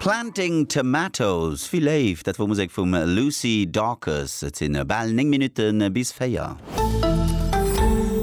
Planting Tomatoes, wéi léif! Dat wor Musek vum Lucy Dawkes. Et sinn bal 9 Minutten bis 4.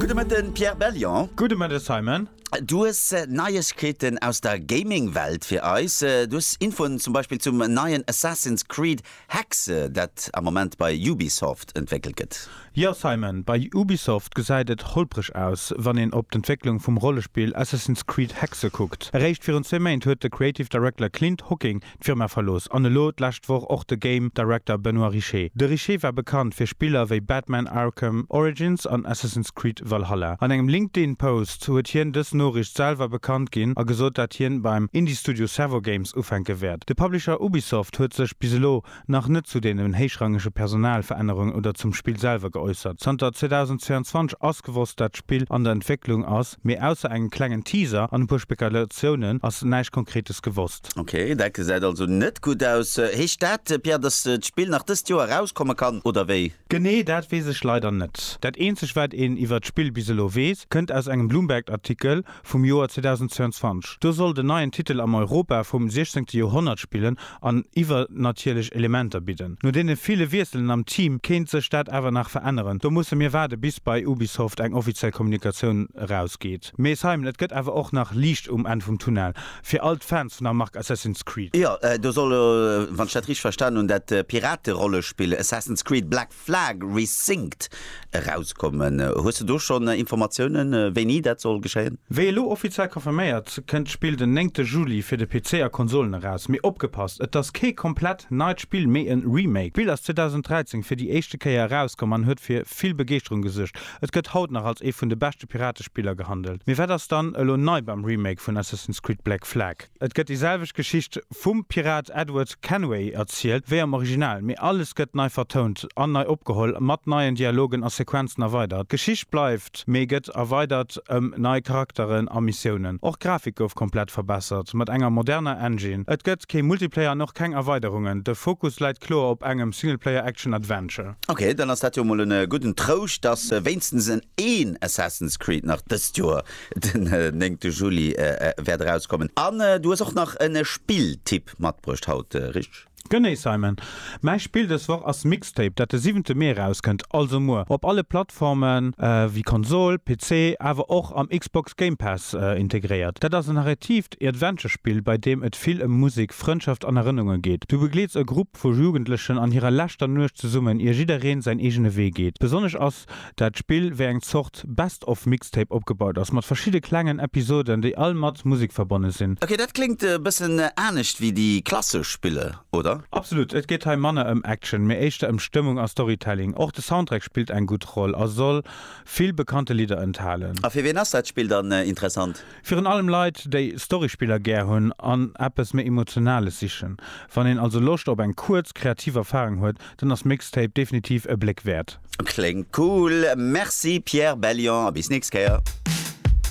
Gudde Mëtten, Pierre Bellion. Gudde Mëtte, Simon. Du hues Neiegkeeten aus der Gaming-Welt fir eis. Du hues Infoen zum Beispill zum neien Assassin's Creed Hexe, dat am Moment bei Ubisoft entwéckelt gëtt. Jo Simon, bei Ubisoft gesäit et holpreg aus, wann een op d'Entwécklung vum Rollespill Assassin's Creed Hexe kuckt. Eréischt virun zwee Méint huet de Creative Director Clint Hocking d'Firma verlooss an elo d'lescht Woch och de Game Director Benoit Richer. De Richer war bekannt fir Spiller wéi Batman Arkham Origins an Assassin's Creed Valhalla. An engem LinkedIn-Post. Sou huet hien dës Noriicht selwer bekannt ginn a gesot, dat hien beim Indie-Studio Servo Games ufänke wäert. De Publisher Ubisoft huet sech bis elo nach net zu deenen héichrangege Personalverännerungen oder zum Spill selwer geäussert. Zanter 2022 ass gewosst, dat d'Spill an der Entwécklung ass, mee ausser engem klengen Teaser an e puer Spekulatiounen ass näischt Konkretes gewosst. Ok, dat gesäit also net gutt aus. Heescht dat, Pierre, dass d'Spill nach dëst Joer erauskommen kann, oder wéi? Genee dat weess ech leider net. Dat eenzeg wat een iwwert d'Spill bis elo weess, kënnt aus engem Bloomberg-Artikel vum Joer 2022. Do soll den neien Titel am Europa vum 16. Joerhonnert spillen an iwwernatierlech Elementer bidden. No deene ville Wiesselen am Team kéint sech dat awer nach veränneren. Do musse mir waarde bis bei Ubisoft eng offiziell Kommunikatioun erausgeet. Mee Simon, et gëtt awer och nach Liicht um Enn vum Tunnel. Fir all d'Fans vun der Mark Assassin's Creed. Jo, do soll elo, wann ech dat richteg verstanen hunn, dat Pirate-Rollespill Assassin's Creed Black Flag Resynced erauskommen. Hues de do schonn Informatiounen, wéini dat soll geschéien? Wéi elo offiziell confirméiert, kënnt d'Spill den néngte Juli fir de PC a Konsolen eraus. Mee opgepasst, et ass kee komplett neit Spill, mee e Remake. D'Spill ass 2013 fir déi éischte Kéier erauskomm an huet fir vill Begeeschterung gesuergt. Et gëtt haut nach als ee vun de beschte Piratespiller gehandelt. Mee wat ass dann elo nei beim Remake vun Assassin's Creed Black Flag? Et gëtt déi selwecht Geschicht vum Pirat Edward Kenway erzielt wéi am Original, mee alles gëtt nei vertount an nei opgeholl, mat neien Dialogen a Sequenzen erweidert. D'Geschicht bleift, mee gëtt erweidert ëm nei Charakteren a Missiounen. Och d'Grafik gouf komplett verbessert, mat enger moderner Engine. Et gëtt kee Multiplayer an och keng Erweiderungen, de Fokus läit kloer op engem Singleplayer Action Adventure. Ok, dann ass dat jo mol en gudden Trouscht, dass wéinstens en een Assassin's Creed nach dëst Joer den néngte Juli wäert erauskommen. An du hues och nach en Spilltipp matbruecht haut, richteg? Genee Simon, mäi Spill dës Woch ass Mixtape, dat de siwente Mee erauskënnt, also muer, op alle Plattforme wéi Konsol, PC, awer och am Xbox Game Pass integréiert. Dat ass en Arrêtiv, Heescht e Adventure-Spill, bei deem et vill ëm Musek, Frëndschaft an Erënnunge geet. Du begleets e Grupp vu Jugendlechen an hirer leschter Nuecht zesummen, ier jiddereen säin eegene Wee geet. Besonnesch ass dat Spill wéi eng Zort Best of Mixtape opgebaut ass, mat verschidde klengen Episoden, déi all mat Musek verbonne sinn. Ok, dat kléngt e bëssen anescht wéi déi klassesch Spiller, oder? Absolut. Et geet hei manner ëm Action, mee éischter ëm Stëmmung a Storytelling. Och de Soundtrack spillt eng gutt Roll a soll vill bekannte Lidder enthalen. A fir wien ass dat Spill dann interessant? Virun allem Leit, déi Storyspiller gär hunn an eppes méi Emotionales sichen. Wann een also Loscht op eng kuerz, kreativ Erfarung huet, dann ass Mixtape definitiv e Bléck wäert. Kléngt cool! Merci Pierre Bellion a bis nächst Kéier!